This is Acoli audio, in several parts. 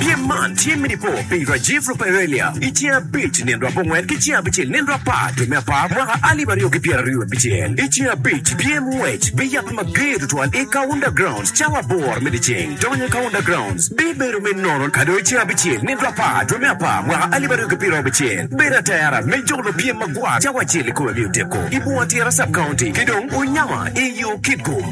Pyem man tye me nipo pi Rajiv Ruparelia i ceng abic nino dwe abongwen ki ceng abicel nino dwe apar dwe me apar mwaka alip aryo ki pyera ryo abicel. I ceng abic pyem ngwec biyabbe mager tutwal i Kaunda Grounds cawa aboro me dyeceng. Donyo i Kaunda Grounds bibedo me nono ka dong i ceng abicel nino dwe apar dwe me apar mwaka alip aryo ki pyera abicel. Bedo atera me jolo pyem magwar cawa acel i kome miyo teko i bunga tira Sub-County ki dong unyama i yo kidgum.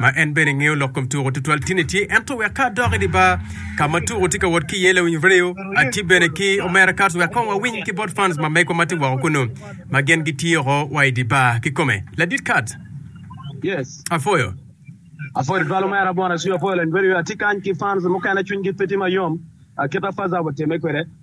ma en bene ngeyo lok kom tuko tutwal tin etye ento wek ka adok idi bar ka ma tuko tye ka wot ki iye lawiny radio atye bene ki omera cars wek kong wawiny ki bot fans ma megwa ma tye woko kunu ma gen gitye oko wa idi bar ki kome ladit kat Yes. apwoyo Apwoyo tutwal omera Bwana Cwi apwoyo lawiny radio atye kany ki fans mukene cwiny gi pe tye mayom aketa faza wateme kwede.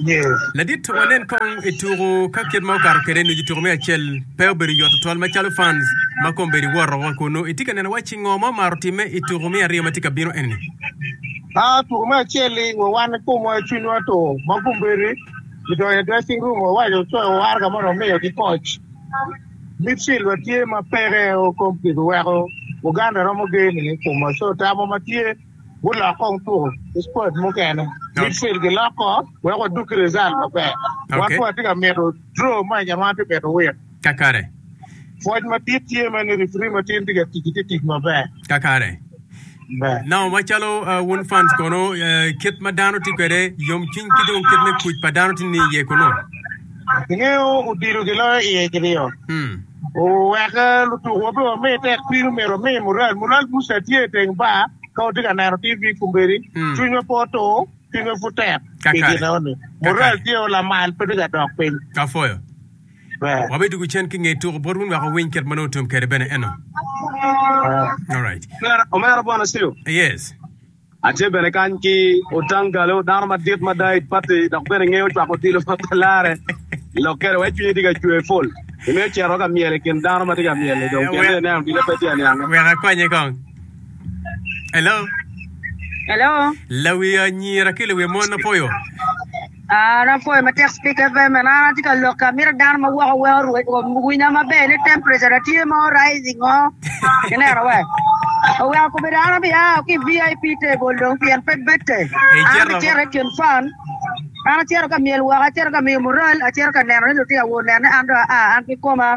Yes. Ladit, wanen kong i tuku ka kit ma okato kede nucu tuku me acel pe obedo yot tutwal macalo fans ma kombedi woto wa kunu. Itye ka neno wacci ngo ma omaro time i tuku me aryo ma tye ka bino eni? Ah, tuku me acel-li wa wan i komwa i cwinywa to ma kombedi gidonyo i dressing room wawaco coyo war ka mono omiyo ki koc. Midfield wa tye ma peke o kom kiweko Uganda romo geyini i komwa so tamo ma tye gulok kong tuko ki squad mukene midfield gilok kong wek wadug ki result maber wan pud atye ka mito draw match eni wan atye ka mito win Kakare. pwoc madit tye mere ni referee matin tye ka tic tye tic maber Kakare. be. Now macalo ah, wun fans kono eh, kit ma dano tye kwede yomcwiny ki dong kit me kuc pa dano tye ni iye kunu. Ingeyo odilo giloyo iye ki ryo. Hmm. Weka lutukuwa pe wami tek piny omyero wami mural. Mural Muca tye i teng bar ka watye ka neno TV kombeddi. Cwinywa pe otur, cwinywa pud tek pi gin enoni. Mural tye o lamal pe tye ka dok piny. Kafoyo, Wabidugo cen ki nge tuku bot wun wek wawiny kit ma nongo otum kwede bene eno. Alright. Omera Bwana Siyo. Yes. Atye bene kany ki Otangalo, dano madit mada i pati dok bene ngeyo cwako odilo pa larre. Lok kede wek cwinyi tye ka cwer pol, imiyo cito ka myel i kin dano ma tye ka myel-li dong kine ni ineno odilo pe tye aniange. Wek akonye kong. Hello. Hello. Lawi anyira ki lawi mon apoyo. An apwoyo matek Spika FM man an atye ka lokke amito dano ma weko weko winya maber ni temperature na tye mo rising o ineno we oweko kobedo an abiya ki i VIP table dong pien pe bette an abicito i kin fan an acito ka myel woko acito ka miyo mural acito ka neno ni lutino awo onene an dong aa an kikoma.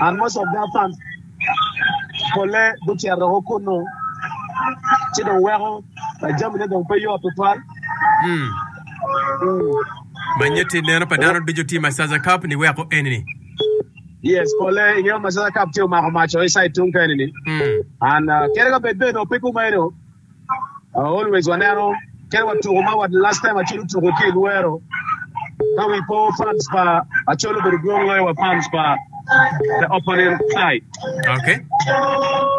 And most of their funds polle gucito woko kunnu ci dong weko jamine dong pe yot tutwal. Ma nyeti neno pa dano ducu tye Massaza Cup ni weko eni-ni. Yes, polle i ngeyo Massaza Cup tye omako maco i side tung keni-ni. And kadi ka bed bene onongo pe kumaeno, Always waneno kit wa tuko ma last time Acholi tuko ki i Luero ka wi po fans pa Acholi obedo dwong loyo wa fans pa the opponent side. Okay.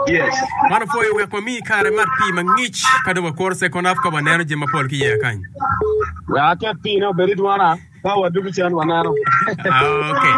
Yes. Mano pwoyo wek wami kare mat pii mangic ka dong wakuru second half ka waneno jami mapol ki yeya kany. Wek aket pii ne obed i dwona. Ka wadudu can waneno. Okay.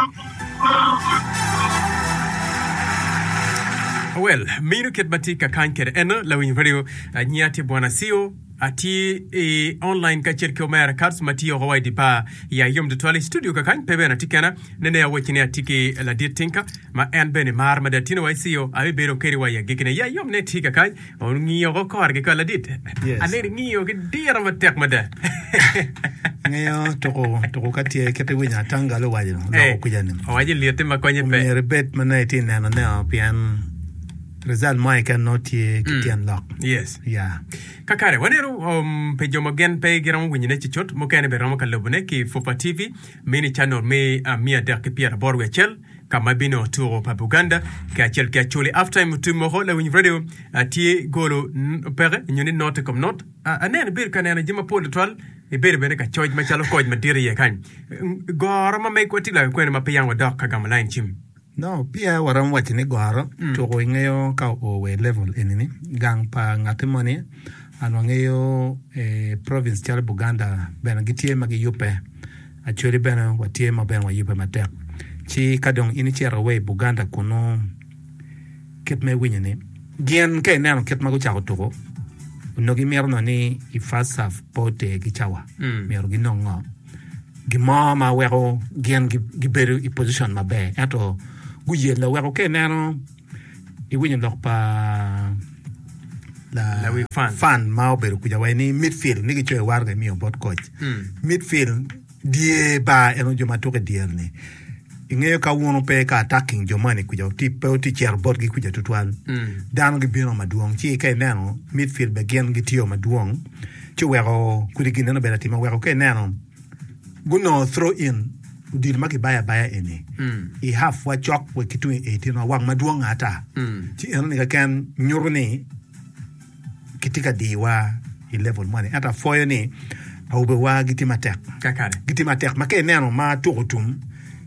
Well, minu kit ma tye ka kany kede eno lawiny radio nyi ati bwana Sio ati i online ka cel ki omera Kats ma tye oko wa i di bar ya yom tutwal i studio ka kany pe bene ati kena nene awecci ni ati ki ladit Tinka ma en bene mar ma da tino wa i Sio abi bedo kedi wa ya gikine ya yom ne tye ka kany Ongiyo ko kore ki kal adit. Yes. Ane ingiyo ki diro matek mada. Ngiyo tuku tuku ka tye kit iwinyo atangalo owaco loko Eh, kwija-ni. Owaco lyeti ma konye pe. Myero ibed ma nongo itye neno neo pien result mo keken nongo tye ki Mm. tyen lok. Yes. Ya. Kakare, waneno um, pi jo ma gen pe giromo winyone cucut, mukene bene romo ka lobone ki Fufa TV, Mini Channel me ah, mia adek ki pyera aboro wiye acel, ka ma bino tuko pa Buganda kacel ki Acholi. After time otim moko lawiny radio ah, tye golo n- peke nyo ni not i kom not. Ah, aneno ibedo ka neno jami mapol tutwal, ibedo bene ka coc macalo koc madit iye kany. Mm, Goro ma megwa tye lwaki kwene ma pe yam wadok ka gamo lain cim. No, peya waromo waco ni goro tuko ingeyo ka oo wa i level eni ni gang pa ngati moni and wangeyo eh, province calo Buganda bene gitye ma giyubbe Acholi bene watye ma bene wayubbe matek. Ci ka dong in icito wa i Buganda kunnu, kit ma iwinyo ni. Gin ka ineno kit ma gucako tuku, onongo imito nongo ni i FASAF pe oter ki cawa. Myero ginong ngo? Gimo ma weko gin gibedo i position maber ento guyelle weko ka ineno. Iwinyo lok pa lawi fan ma obedo kuca waci ni midfield ni gicoyo war ka imiyo bot koc. Hmm. Midfield dye bar en jo ma tuko i dyere ni. Ingeyo ka wun ope ka attacking jo mani kuca ti pe ti cero botgi kuca tutwal. Hmm. Dano gibino madwong ci ka ineno midfield be gin gitiyo madwong ci weko kudi gineno bedo atima weko ka ineno gunongo throw in odilo ma kibayo abaya eni i hafwa cok wa ki tung i eighteen-wa wang madwong ata. Ci enoni keken nyuto ni kitye ka diwa i level moni. Ento apwoyo ni awobewa gitye matek. Kakare. Gitye matek ma ka ineno ma tuko otum,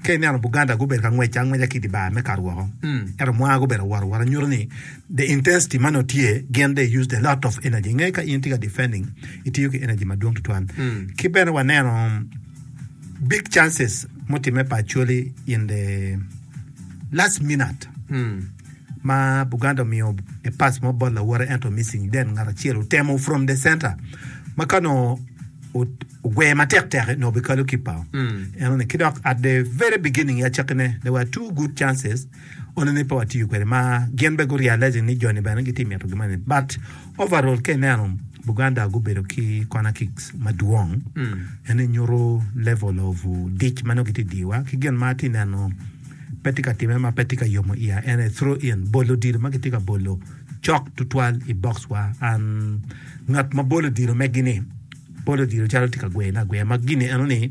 ka ineno Buganda gubedo ka ngwec angweca ki i di bar me kato woko. Ento mwanga gubedo awot awota nyuto ni The intensity ma nongo tye gin they used a lot of energy. Inge ka in tye ka defending, itiyo ki energy madwong tutwal. Ki bene waneno big chances mutimme pa Acholi in the last minute ma Buganda omiyo a pass mo bot lawote ento missing then ngat acel otemo from the center ma ka nongo ot- ogweye matek tek nongo obikalo kipao. Eno ni ki dok at the very beginning ya cakkine there were two good chances one ni pe watiyo kwede ma gin bene gu realizing ni joni bene gitye ka mito gin moni but overall ka ineno Buganda gubedo ki corner kicks madwong ene nyuto level of dic ma nongo gitye ka diyowa ki gin ma atye ka neno pe tye ka timme ma pe tye ka yomo iya en aye throw in bolo odilo ma kitye ka bolo cok tutwal i box wa and ngat ma bolo odilo megi ni bolo odilo calo tye ka gweyone agweya ma gini eno ni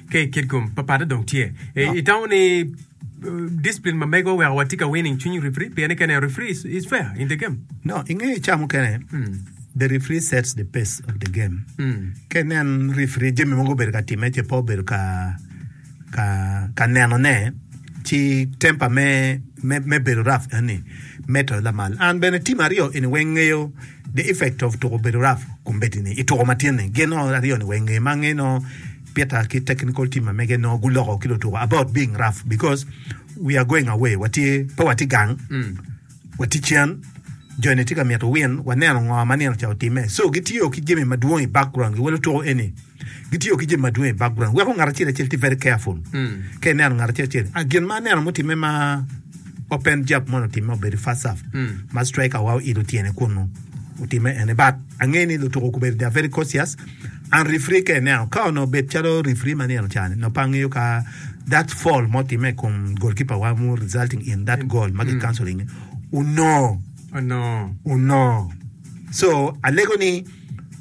Ka i kit kom, papatte dong tye. Itamo ni discipline ma mego weko watye ka winning cwiny referee pien ni kene a referee is fair in the game? No, ingeyo ca mukene the referee sets the pace of the game. Ka inen referee jami mogo obedo ka time ce pe obedo ka ka ka nenone ci temper me me bedo rough eni medo lamal. An bene team aryo eni weng ngeyo The Effect of Tuko Bedo Rap Kombeddi-ni i tuko matin-ni, gin nongo aryo-ni weng nge ma ange nongo Peter ki technical team ma mege nongo guloko ki lutuko about being rough because we are going away, watye, pe watye gang, watye cen, joni tye ka myero win, waneno ngo ma nino ca otimme. So gitiyo ki jami madwong i background-gi wa lutuko eni. Gitiyo ki jami madwong i background weko ngat acel acel tye very careful ka ineno ngat acel acel. Ah, gin ma aneno mutimme ma open jab mono otimme obedo i first half ma striker wa oilo tyene kunu otimme ene but angeyo ni lutuko kobedi they are very cautious and referee ka ineno ka onongo obed calo referee ma nino cani nongo pe angeyo ka that fall ma otimme i kom goalkeeper wa mu resulting in that goal ma gicancelling-nge onongo Onongo. onongo so alego ni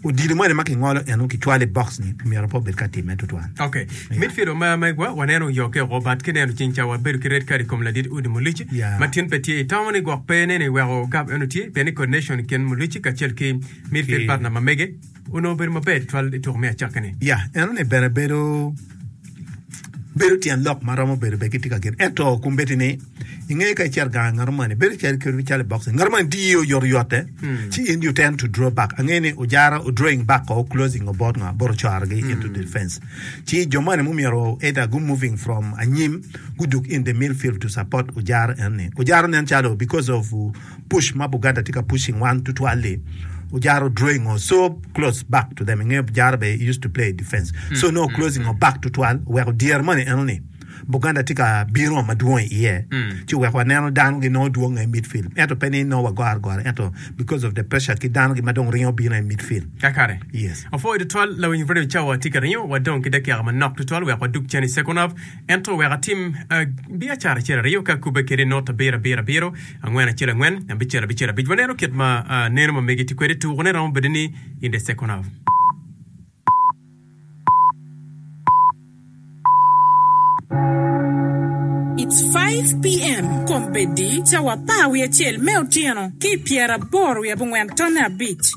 Odilo moni ma kingolo eno kicwalo i box ni myero pe obed ka timme tutwal. Okay. Yeah. Mit filo ma megwa waneno oyokke oko bat ki neno cing ca wabedo ki red card i kom ladit udi Mulic yeah. ma tin pe tye i town ni gwok pe nene weko gab eno tye pien ni coordination kin Mulic kacel ki midfield partner ma mege onongo obedo maber twal i tuko me acakki ni. Yeah, eno ni bene bedo bedo tyen lok ma romo bedo bene kitye ka gen ento kum bedi ni inge ka icer gang ngato mani bedo cel kedo cale box ngato mani diye oyoto yote hmm. ci in you tend to draw back ange ni ojara o drawing back ko closing o bot nga boro choro gi into hmm. defense ci jo mani mu miro either go moving from anyim guduk in the midfield to support ojara en ni ojara nen calo because of puc ma Buganda tye ka puc i ngwan tutwal-li, ojaro drawing or so close back to them. I nge ojaro bene, he used to play defense. So nongo closing or back tutwal oweko dyer moni enoni Buganda tye ka bino madwong i iye ci oweko waneno dano ginongo dwong i midfield. Ento pe ni nongo wagoro agora ento because of the pressure ki dano gi ma dong ringo bino i midfield. Kakare. Yes. Opwoyo tutwal lawiny Fredo Cawa tye ka ringo wa dong ki dakika manok tutwal wek wadug cen i second half. Ento wek atim biacara acel aryo ka kubbe kede not abiro abiro abiro, angwen acel angwen, abicel abicel abic. Waneno kit ma neno ma mege tye kwede. Tukone romo bedo ni in the second half. It's five PM kombeddi cawa apar wiye acel me otyeno ki i pyeraboro wiye abongwen tone abic.